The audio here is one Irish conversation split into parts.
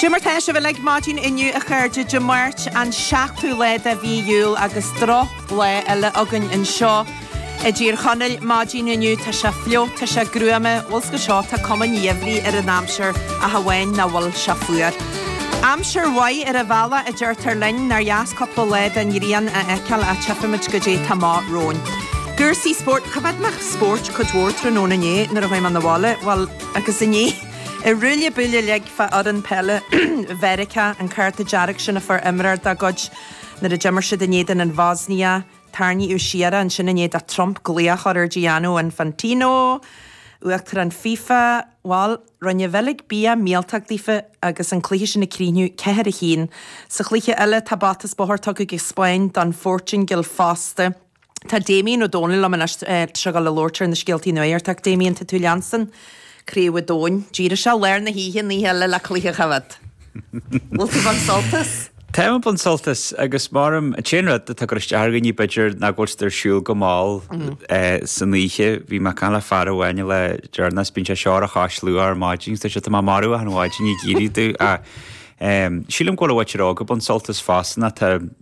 Cad é mar atá sibh uilig maidin inniu a chairde, Dé Máirt an 7ú lá de mhí Iúil agus droch lá eile againn anseo i dTír Chonaill maidin inniu. Tá sé fliuch, tá sé gruama bhuel is go seo tá cuma an gheimhridh ar an aimsir ach amháin nach bhfuil sé fuar. Aimsir mhaith ar a bealach a deirtear linn, nár dheas cúpla lá den ghrian a fheiceáil ach tífimid goidé atá amach romhainn. Cúrsaí spóirt, choimhéad mé an spóirt cuid mhór tráthnóna inné nuair a chuaigh mé na bhaile, bhuel agus inné, An ruaille buaille uilig fá dtaobh d'fhoireann peile Mheiriceá an cárta dearg sin a fuair imreoir dá gcuid nuair a d'imir siad in éadan an Bhosnia. Tarraingíodh siar é ansin i ndiaidh do Trump glaoch a chur ar Gianni Infantino, Uachtarán FIFA. Bhal, rinne an Bheilg bia míoltóg daofa agus an cluiche sin ag críochnú ceathair a haon. Sa chluiche eile tá bata is bóthar tugtha ag an Spáinn don Phortaingéil fosta. Tá Damien Ó Dónaill liom anois, tá muid ag gabháil a labhairt ar na scéalta nuachta ach Damien tá tú ag leanstan Craobh an Domhain, d'éirigh tú i lár na hoíche, an oíche eile le cluiche a choimhéad. Bhfuil tú ag baint sult as? Tá mé ag baint sult as agus m'anam, an t-aon rud atá ag cur isteach ar dhaoine b'fhéidir ná go bhfuil siad ar siúl go mall san oíche. Bhí mé ag caint le fear amháin le deireanas bíonn sé ar a chois luath ar maidin agus ar seisean tá mé maraithe achan mhaidin ag iarraidh éirí ach sílim go bhfuil na buachaillí óga ag baint sult as fosta nó tá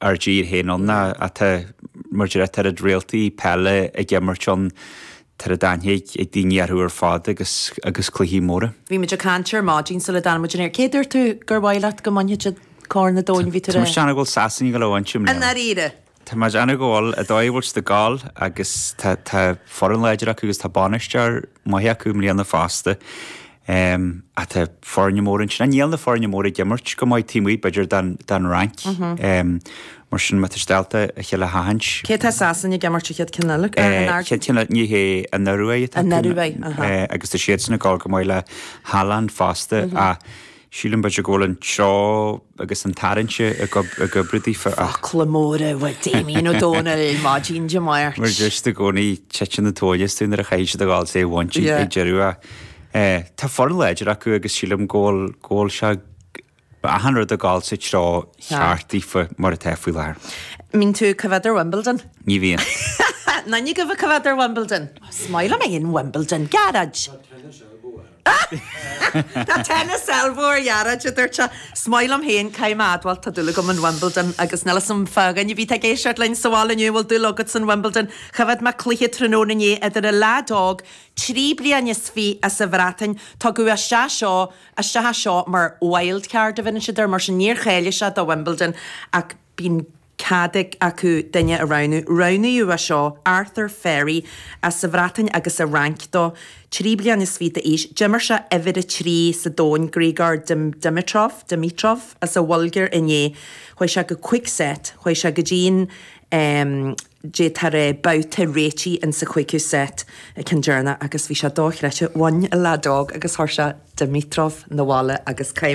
ár dtír féin ann ná atá mar tá a oiread réaltaí peile ag imirt ann tá aithne ag daoine orthu ar fad agus agus cluichí móra. Bhí muid ag caint ar maidin sula dtáinig muid ar an aer, cé a dúirt tú gur mhaith leat go mbainfeadh siad Corn an Domhain, bhí tú Tá mé ag. déanamh go bhfuil Sasain maith go leor anseo, i mbliana. ndáiríre? Tá mé ag déanamh go bhfuil, an dóigh go bhfuil siad ag gabháil agus tá tá foireann láidir acu agus tá bainisteoir maith acu i mbliana fosta. Ehm, tá foirne móra ansin. Ach níl na foirne móra ag imirt go maith taobh amuigh, b'fhéidir, don, don Fhrainc? Ehm, mar sin, má tá siad ábalta a chéile a sheachaint. Cé atá Sasain ag imirt an chéad cheann eile, an Norway? Chéad cheann eile, ní hé, an Norway atá. An Norway, aha. Eh, agus tá siadsan ag gol go maith le Haaland fosta, ach sílim b'fhéidir go bhfuil an treo. agus an tarraingt ag oibriú daofa. Focla móra ó Damien Ó Dónaill maidin Dé Máirt. Mar a dúirt i gcónaí, titeann an tóin astu nuair a shíleann siad go bhfuil sé bainte Yeah. ag deireadh a Eh, tá foireann láidir acu agus sílim go bhfuil, go bhfuil sé go bhfuil achan rud ag dul sa treo cheart daofa mar atá faoi láthair. An mbíonn tú ag coimhéad ar Wimbledon? Ní bhíonn. Ná ní choimhéadaim, coimhéad ar Wimbledon? Shíl mé in Wimbledon, garage! Tá an tennis ró-mhall, dáiríre, a dúirt sé. 'S maith liom féin, caithfidh mé admháil, tá dúil agam in Wimbledon agus níl fhios a'm fá dhuine ar bith atá ag éisteacht linn sa bhaile inniu a bhfuil dúil agat san Wimbledon. Choimhéad mé cluiche tráthnóna inné idir an leaid óg trí bliana is fiche as a' Bhreatain, tugadh isteach seo isteach seo mar wildcard a bheireann siad air, mar sin níor cháiligh sé do Wimbledon ach bíonn Cad acu duine a roghnú? Roghnaíodh as seo, Arthur Ferry, as sa Bhreatain agus sa Fhrainc dó, trí bliana is fiche d'aois. D'imir sé uimhir a trí sa domhain, Grigor Dimitrov, Dimitrov, as an Bhulgáir inné. Chuaigh sé go cúig set, chuaigh sé go dtí an em, Dé tar eh, babhta réitigh in sa chúigiú set, an ceann deireanach agus bhí sé dochreidte, bhí an leadóg agus chuir sé Dimitrov abhaile agus